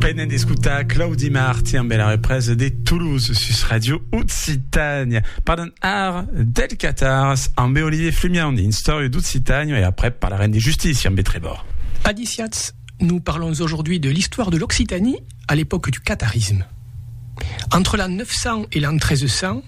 Venez d'escutar Claudi Marti amb la represa de Toulouse sus Radio Occitània. Parlem ara del Catars amb Olivier Flumian dins Storia d'Occitània e après parlarem de justícia amb Trevor. Adiciats, nous parlons aujourd'hui de l'histoire de l'Occitanie à l'époque du catarisme. Entre l'an 900 et l'an 1300,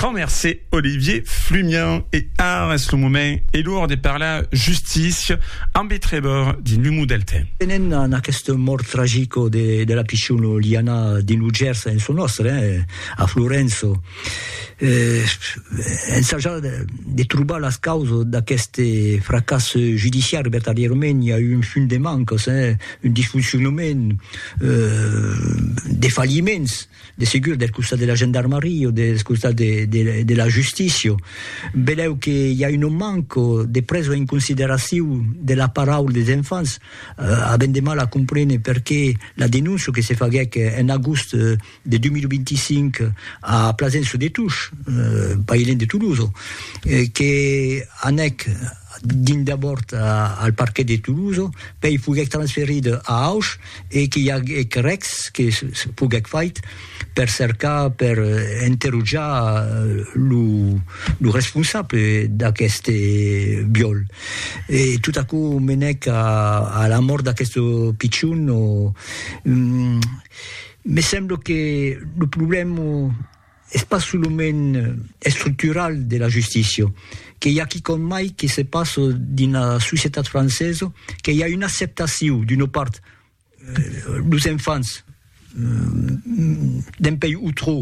Grand mercé Olivier Flumian e ara es lo moment e l'or de parlar justícia ambe Trevor di Numu del Tem. Venent a aquesta mòrt tragico de la pichona Liana dins lo Gers en çò nòstre, a Florenço, ensajar de trobar las causas d'aqueste fracàs judiciari, vertadièrament i a un fum de mancas, un disfoncionament, de falliments. de segur del costat de la gendarmaria o del costat de, de, de la justícia. Veleu que hi a un manco de presa en consideraciu de la paraula des enfants, eh, avent de mal a comprene perqué la denúncia que se faguèc en agost eh, de 2025 a Plasença de Tush, eh, pas lent de Toulouse, eh, que anèc dins d'abòrd a, al parquet de Toulouse, pei foguèc transferida a Auch, e qu'i aguec rècs que se poguec fait per cercar, per enterotjar lo responsable d'aqueste viòl. E tot aquò menèc a la mòrt d'aqueste pichon. Me sembla que lo problèma Es pas solament estructural de la justícia, que i a quicòm mai que se passa dins la societat francesa, que i a una acceptacion d'una part los enfants dempuèi o trò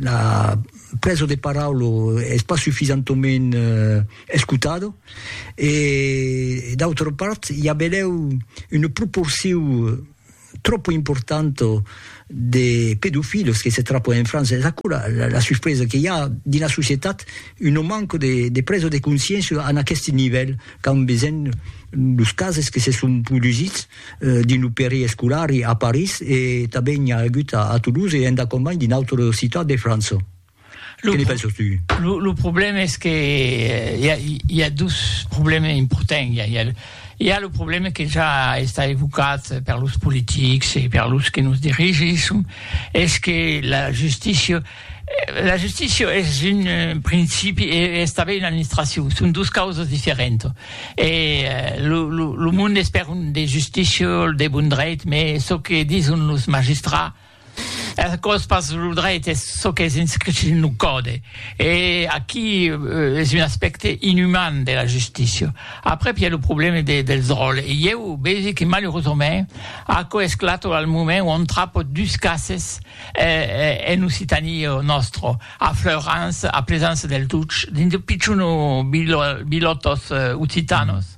la presa de paraula es pas sufisentament escotada e d'autra part i a benlèu una proporcion tropo importanto de pedofilos que se trapo en França, es aquò la la suspresa que i a dins la societat un non manco de de presa de consciéncia en aqueste nivèl qu'an besenh los cases que se son produsits dins lo peri escolar a París e tanben i a agut a Toulouse e endacòm mai dins d'autres ciutats de França. Lo, lo, lo problème es que hi a, hi a dos problèmes importants. Hi a, hi a, hi a lo problème que ja a estat evocat per los politics e per los que nos dirigisson, es que la justícia, la justícia es un principi e es tanben una administracion, son dos causas diferentas. E lo, lo, lo monde es per un de justícia, de bon drech, mès çò que dison los magistrats, Es còs pas lo dreit, es çò qu'es inscrich dins lo còde. E aquí es un aspècte inüman de la justícia. Aprèp i a lo problème de, dels ròles. E ieu vegi que malurosament aquò es clar al moment ont trapo dus cases en Occitanie nòstra, a Fleurance, a Plaisance-Deltuch, dins de pichons bilòtos occitanos.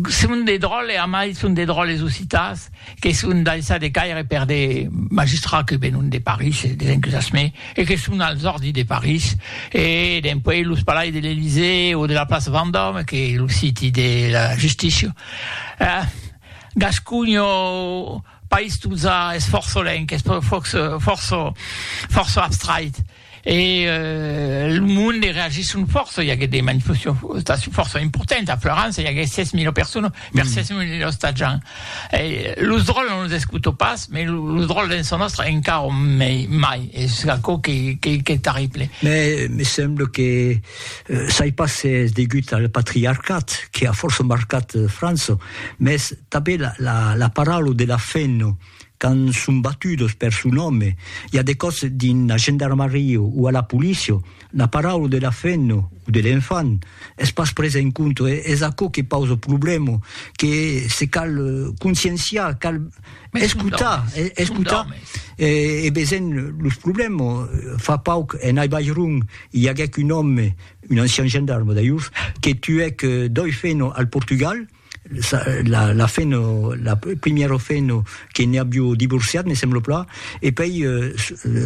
Son de dròlles, a mai son de dròlles occitans que son daissat de caire per de magistrats que venon de París e des enthusasmés e que son als òrdis de París e dempuèi los palais de l'Elysée o de la plaça Vendòme que lo siti de la justícia. Gasconha, país totza es fòrça lenc, es fòrça fòrça abstrait. E lo monde reagisson fòrça, i aguèt de manifestacions fòrça importantas, a Florança i aguèt 6.000 personas per 6.000 ostatjants. E los dròlles non los escutò pas, mai los dròlles dens son òstre encara mai, mai, es aquò qu'es terrible. Mai me sembla que sai pas se es degut al patriarcat que a fòrça marcat França, mès tanben la paraula de la fen, quand son batudos per son òme, i a de còps dins la gendarmaria o a la polícia, la paraula de la femna o de l'enfant es pas presa en compte, es aquò que pausa problèma, que se cal conscienciar, cal escotar, escotar e veisent los problèmas. Fa pauc en Aibairon i aguèc un òme, un ancian gendarme d'ailhors, que tuèc doi femnas al Portugal, la, la fin, la première fin, que ne aviu divorciat, me sembla pla, e pei euh,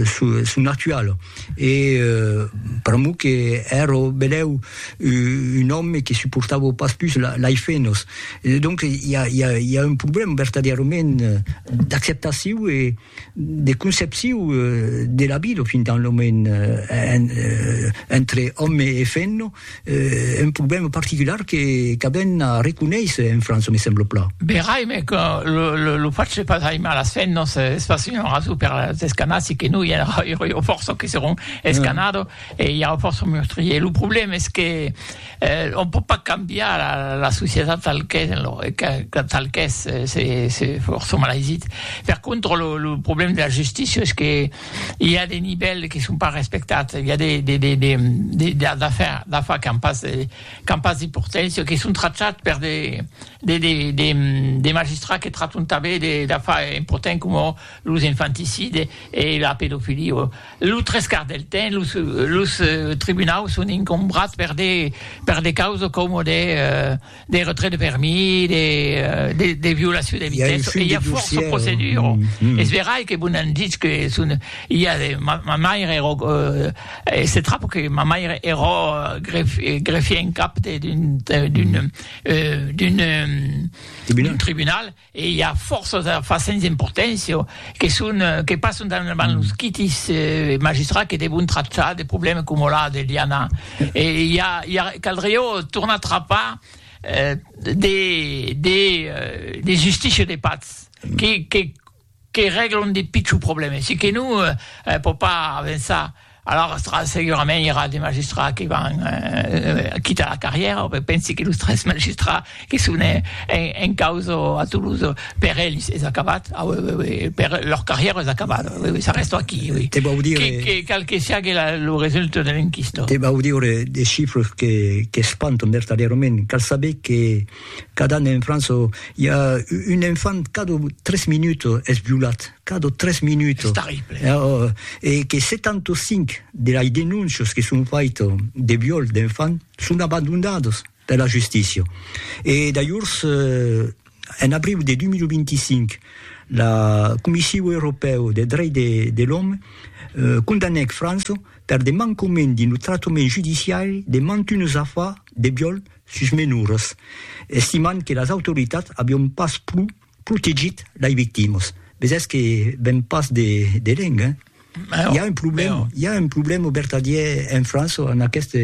son, son actual. E euh, pr'amor que ero beleu un òme que suportava pas pus la, lai fenos. E donc, i a, i a, i a un problèm vertadièrament d'acceptaciu e, de concepcion de la vida fin tant lo moment entre òme e femna, un problèma particular que qu'avèn a reconéisser en França, me sembla plan. Verai, me que lo lo fach de pas aimar las femnas es pas una rason per las escanar, se que non i aurà fòrça que seràn escanado e i aurà fòrça meurtriers. Lo problèma es que Eh, on pòt pas cambiar la, la societat tal qu'es, en lo, que, tal qu'es, se, se fòrça malaisit. Per contra, lo, lo problèm de la justícia es que i a de nivèls que son pas respectats, i a de, de, de, de, de, de d'afar, d'afar qu'an pas, qu'an pas d'importància, que son trachats per de, de, de, de, de magistrats que trachon tanben de, d'afar importants coma los infanticides e la pedofilia. Lo tres quarts del temps, los los tribunaus son incombrats per de per de causes coma de de retrait de permis, de de de violacion de vitessa, e i a fòrça proceduras. Es verai que vos n'an ditz que son i a de ma ma maire era se trap que ma maire era gref greffier en cap de d'un d'un d'un d'un tribunal, E i a fòrça de fasènhs emportents que son que passon davant los quitis magistrats que devon tractar de problèmes coma la de Liana. E i a i a caldrió tornar trapar de de de justicia de patz que que que règlon de pichons problèmes e que non pòt pas avançar, alòrs segurament i aurà de magistrats que van quitar la carrièra, pensi que los tres magistrats que son en causa a Toulouse, per ells es acabat, lor carrièra es acabada, s'arrèsta aquí, cal que siágue lo resultat de l'enquista. Te vau dire de chifres qu'espantan vertadièrament, cal saber que. Cada an en França i a un enfant cada tres minuts es violat, cada tres minuts. Es terrible. E que 75 de las denóncias que son faitas de viol d'enfant son abandonadas per la justícia. E dajors, en abriu de 2025, la Comissiu Europèu de Drech de l'Òme condanèc França per de mancament dins lo tractament judiciari de mantunes afars de viol sus menors, estimant que las autoritats avion pas pro protegit lai victimas. Vesètz que ven pas de de lenc, hein? Mèu, Hi a un problèm, mèu. hi a un problèm au vertadièr en França en aqueste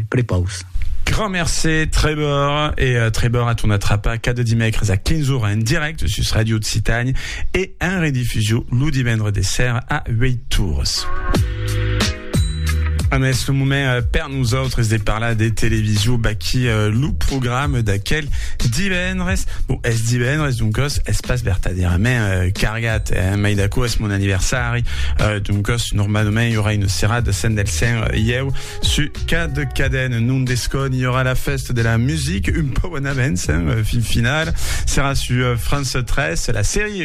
prepaus. Grand mercé Trevor e Trevor a ton atrapa cada dimècres a 15 ora en dirècte sus Radio Occitània e en redifusiu lo divendre de ser a 8 ores. Ames, ah, le moment euh, per nosaltres de parlar de television, baqui euh, le programme d'aquel divendres. Bon, es divendres, donc os, es pas vertadièrament euh, cargat, eh? mai d'acord, es mon anniversari, euh, donc os, normalement, il y aura une serra de scène del Saint euh, Ieu, su cad caden, non d'escon, il y aura la fête de la musique, un peu en avance, hein, euh, fin final, sera sur euh, France 13, la série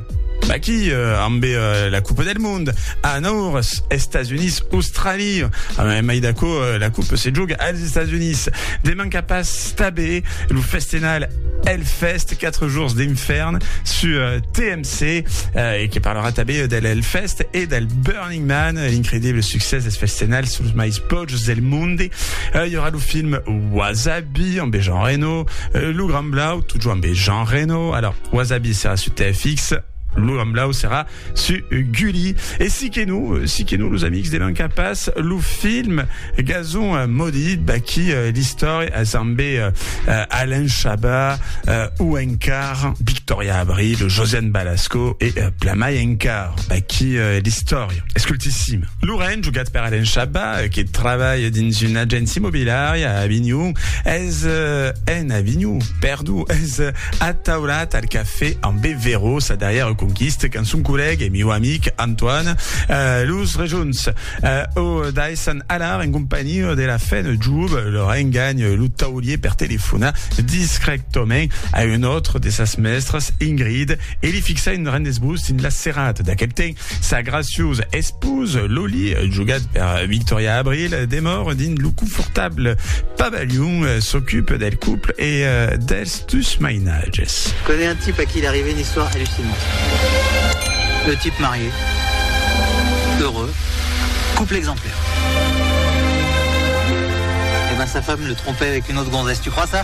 Aquí amb la Coupe del Mond a Naurs, Estats Units, Austràlia. Amb mai d'aquò, la Coupe se joga als Estats Units. Deman cap a Stabé, lo festenal Hellfest, 4 jours d'infern sur TMC, eh, e que parlarà també del Hellfest e del Burn Running Man, l'incredible succès dels festènals suls mais pòjos del monde. Ui aurà lo film Wasabi amb Jean Reno, lo Grand Blau, totjor amb Jean Reno. Alors, Wasabi serà su TFX, lo Grand Blau serà su Gulli. E si que no, si que no, los amics de Manca Pas, lo film Gazon Maudit, baqui l'istòria es amb Alain Chabat, Ouencar, Victoria Abril, Josiane Balasco e plan mai encara. Aquí e l'istòria. Escoltissim. Lauren, jogat per Alain Chabat, que trabalha dins una agéncia imobiliària a Avignon, es en Avignon, perdó, es ataulat al cafè amb Bevero, sa darrièra conquista, quand son collègue e mieu amic Antoine, los rejunts, o daissan alar en companhiá de la fin de job, Lauren ganha lo taulier per telefonar discrètament a un autre de sas mèstras, Ingrid, e li fixa un grand esbós dins la serrada d'aquel temps. Sa graciosa esposa, Loli, jogat per Victoria Abril, demòra dins lo confortable pabalhon, s'ocupa del couple e dels dus mainatges. Je connais un type à qui il est arrivé une histoire hallucinante. Le type marié, heureux, couple exemplaire. Eh ben sa femme le trompait avec une autre gonzesse, tu crois ça?